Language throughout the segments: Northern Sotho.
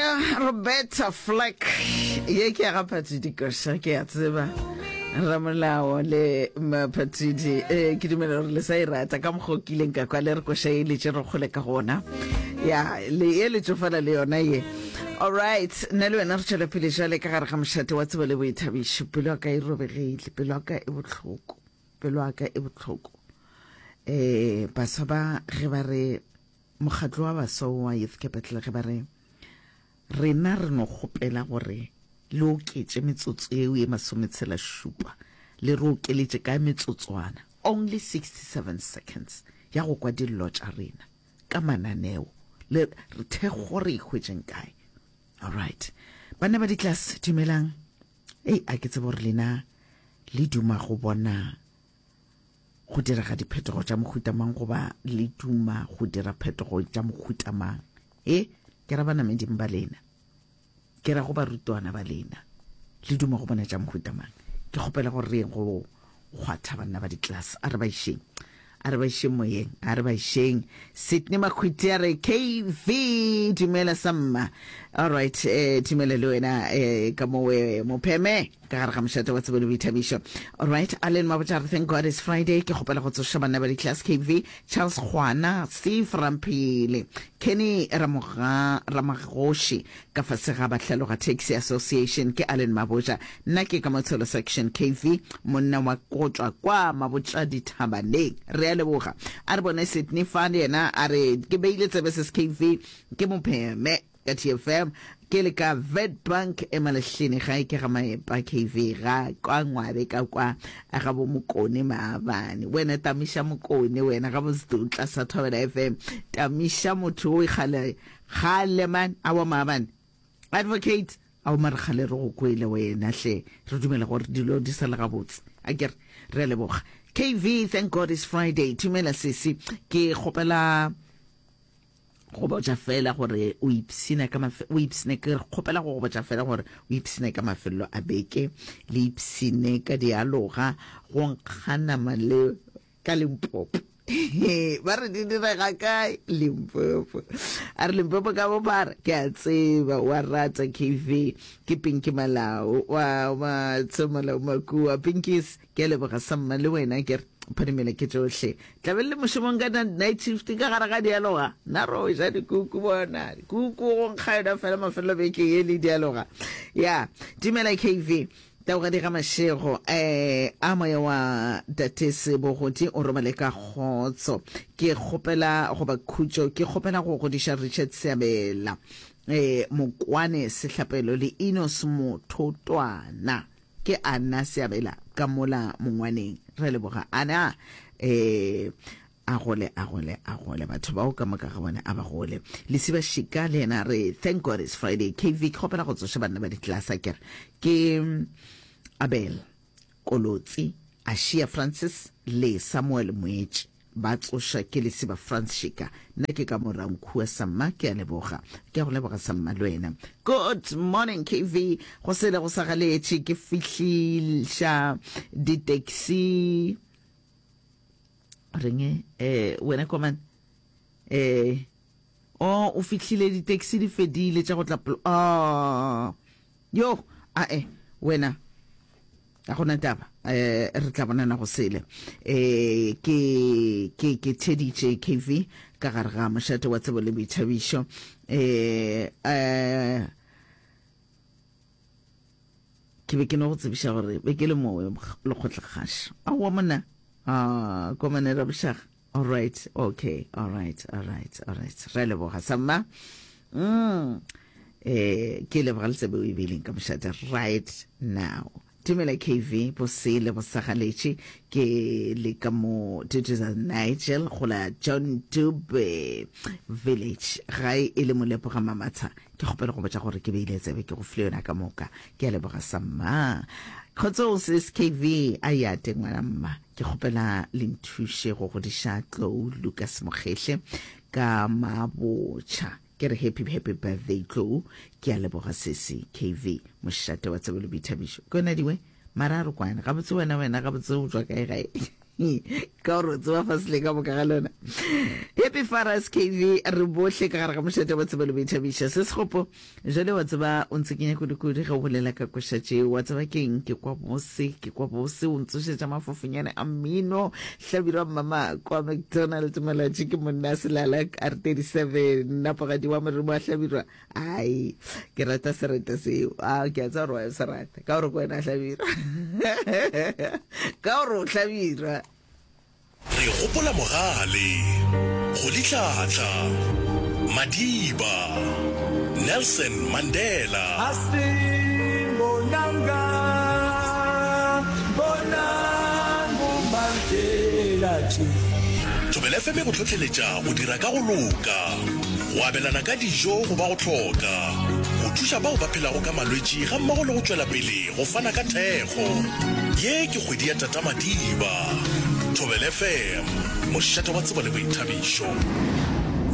ya roberta flack ye ke ya ga phathidi koša ke ya tseba ramolao le maphathidi um ke dumela gore le sa e rata ka mokgwa o kileng ka kwa le re koša e letse re kgole ka gona ya le e letsofala le yona ye allright nna le wena re tšwela pele jale ka gare ga mošate wa tsebo le boithabišo pelo ya ka e robegile pelo ya ka e botlhoko pelo ya ka e botlhoko um baswa ba ge ba re Mokgatlo wa Baswa wa Youth Capital ge ba re, Rena re no kgopela gore le oketše metsotso yeo ye masometshela-šupa, le re okeletše ka metsotswana, only 67 seconds, ya go kwa dillo tša rena ka mananeo, le re thekgo re e hwetšeng kae. Alright. Banna ba di-class, dumelang. Ei, a ke tsebe gore lena le duma go bona. Go direga diphetogo tša mohuta mang goba le duma go dira phetogo tša mohuta mang? E, ke ra banameding ba lena. Ke ra go barutwana ba lena. Le duma go bona tša mohuta mang? Ke kgopela gore re yeng go kgwatha banna ba ditlase. A re ba išeng. A re ba išeng moyeng. A re ba išeng. Sydney Makhwiti a re KV dumela sa mma. All right, eh, dumela le wena eh, ka mowe mopheme. ka gare ga mošate wa tsebo le boithabišo. Alright, Allen Mabotjare, thank God it's Friday. Ke kgopela go tsoša banna ba di-class KV, Charles Kgwana, Steve Ramphele, Kenny Ramoga, Ramagoši, ka fase ga Bahlaloga Taxi Association. Ke Allen Mabotja, nna ke ka Motshelo Section KV, monna wa Kotšwa kwa Mabotja Dithabaneng. Re a leboga. A re bone Sydney fa le yena a re ke beile tsebe ses KV, ke mo pheme. Ka TFM ke le ka Witbank e Malehleni gae ke ga Maepa KV ga kwa Ngwabe ka kwa ga bo Mokone Maabane. Wena Tamisha Mokone wena ga bo Zdutla sa Thobela FM. Tamisha motho o ikgale kgale man a wa Maabane. Advocate a o mare kgale re go kwele wena hle re dumela gore dilo di sa le gabotse. A ke re leboga. KV thank God is Friday. Tumela sisi ke kgopela go botša feela gore o ipshina ka o ipshine ke kgopela go go botša feela gore o ipshine ka mafelelo a beke le ipshine ka dialoga go nkga nama le ka limpopo ba re di direga kae limpopo a re limpopo ka bo ba re ke a tseba wa rata kv ke pinki malao wa wa tsemola makua pinkis Ke a leboga sa mma le wena ke re phadimela ke tšohle tla be le mošomong ka night shift ka gare ga dialoga na ro ja dikuku bona kuku go nkga yona fela mafelelo beke ye le dialoga ya timela kv taoga di ga mašego eh a moya wa tatese bogodi o robale ka kgotso ke kgopela goba khutšo ke kgopela go godiša richard seabela eh mokwane sehlapelo le inos mothotwana Ke Anna Seabela ka mola mongwaneng. Re leboga Anna. Eh, a gole, a gole, a gole. Batho bao ka moka ga bone a ba gole. Lesiba Shika le yena re thank God it's Friday. KV ke kgopela go tsoša banna ba ditlasa ke re ke Abel Kolotsi, Ashia Francis le Samuel Moetši. Ba tsoša ke lesiba Frans Shika nna ke ka Morankhuwa sa mma ke a leboga. Ke a go leboga sa mma le wena. Good morning KV go sele go sa galetše ke fihliša di taxi renge eh wena komane eh Oh o fihlile di taxi di fedile tša go tla ah yo a e wena a gona taba eh re tla bonana go sele eh ke ke ke Teddy JKV ka gare ga mošate wa tsebo le boithabišo eh eh ke be ke no go tsebiša gore be ke le mowe lekgotlekgaša a wa mona a komanela bošaga Alright, okay, alright, alright, alright. Re leboga sa mma. Mm. Eh, ke leboga le tsebe o e beileng ka mošate right now. Tumela KV bosele bosagaletše ke le ka mo Tutuza Nigel go la John Dube Village gae e le molepo ga mamatsha ke kgopela go botša gore ke beile tsebe ke go file yona ka moka ke a leboga sa mma kgotso o se skv a ya teng ngwana mma Ke kgopela le nthuše go godiša Tlou Lucas Mokgehle ka mabotšha. Ke re happy happy birthday Tlou. Ke a leboga sesi. KV mošate wa tsebo le boithabišo. Ke yona diwe mara a re kwane gabotse wena wena gabotse o tswa kae gae ka gore o tseba fa sele ka boka ga lona happy faras kv re bohle ka gare ga mošate wa tsebelo boithabiša se segopo Bjale, wa tseba, o ntsekenya kudu-kudu ge o bolela ka koša tšeo. Wa tseba ke eng? Ke kwa bose, ke kwa bose. O ntsošetša mafofonyane a mmino. Hlabirwa mmama kwa McDonald, Molaji ke monna a selala, R37, napogadi wa morimo wa Hlabirwa. Ai, ke rata sereta seo. A, ke a tseba gore wa se rata, ka gore ke wena Hlabirwa. Ka gore o Hlabirwa. Re gopola Mogale, Golitlhatla, Madiba, Nelson Mandela. Hastin bonanga bonang bo Mandela tje. Thobela FM e go hlohleletša go dira ka go loka, go abelana ka dijo go ba go hloka, go thuša bao ba phelago ka malwetši gammogo le go tšwela pele Go fana ka thekgo. Ye ke kgwedi ya Tata Madiba. Thobela FM, mošate wa tsebo le boithabišo.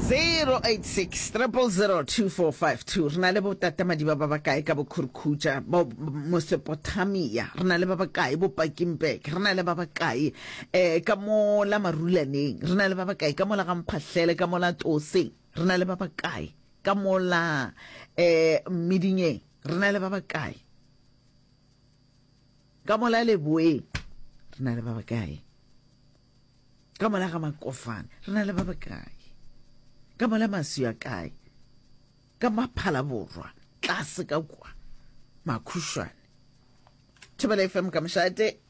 086 000 2452 Re na le bo-Tata Madiba ba bakae ka Bokhurukhucha, bo Mosepotamia? Re na le ba bakae bo-Pakingburg? Re na le ba bakae um ka mo la Marulaneng? Re na le ba bakae ka mo la Gamphahlele, ka mo la Toseng? Re na le ba bakae ka mo la um Mmidingeng? re na le ba bakae ka mola leboeng re na le ba bakae ka mola ga makofane re na le ba bakae ka mola maswi a kae ka maphala borwa tlase ka kwa makhušwane thobela fm ka mošate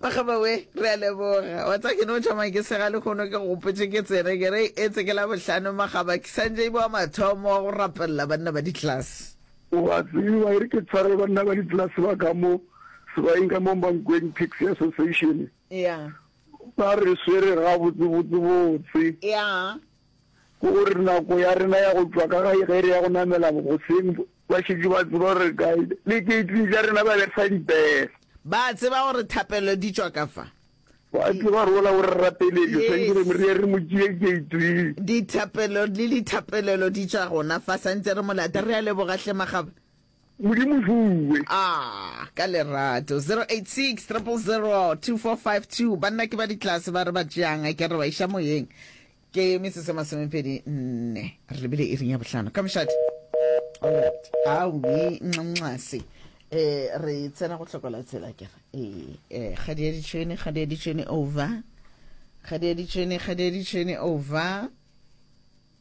Makgaba we, re a leboga. Wa tsa ke no thoma ke sega lehono ke gopotše ke tsere ke re etse ke la bohlano makgaba ke santše ibo wa mathomo wa go rapelela banna ba ditlase. O a tseba e re ke tshware banna ba ditlase ba ka mo sebaeng ka mo Mankweng Taxi Association, Yeah. ba re swere gabotse botse botse. Yeah. Ke gore nako ya rena ya go tšwa ka gae ge re ya go namela goseng Ba šetše ba tseba gore re kae, le dikeiting tša rena ba re fa dipere. Ba a tseba gore thapelo di tšwa ka fa. Ba a tseba gore ola o re rapeletše, swantše re mo re ye re mo tšee keiting. Dithapelo le dithapelelo di tšwa gona fa, santše re mo lata. Re a leboga hle Magaba. Modimo fuwe. Ah, ka lerato. 086 000 2452. Banna ke ba ditlase ba re ba tšeang, ke re ba iša moyeng. Ke metsotso e masomepedi nne re lebile iring ya bohlano ka mošate. Alright. Aowi nxase. E re tsena go hlokola tsela ke re. E e ga di ya ditšhwene, ga di ya ditšhwene over. Ga di ya ditšhwene, ga di ya ditšhwene over.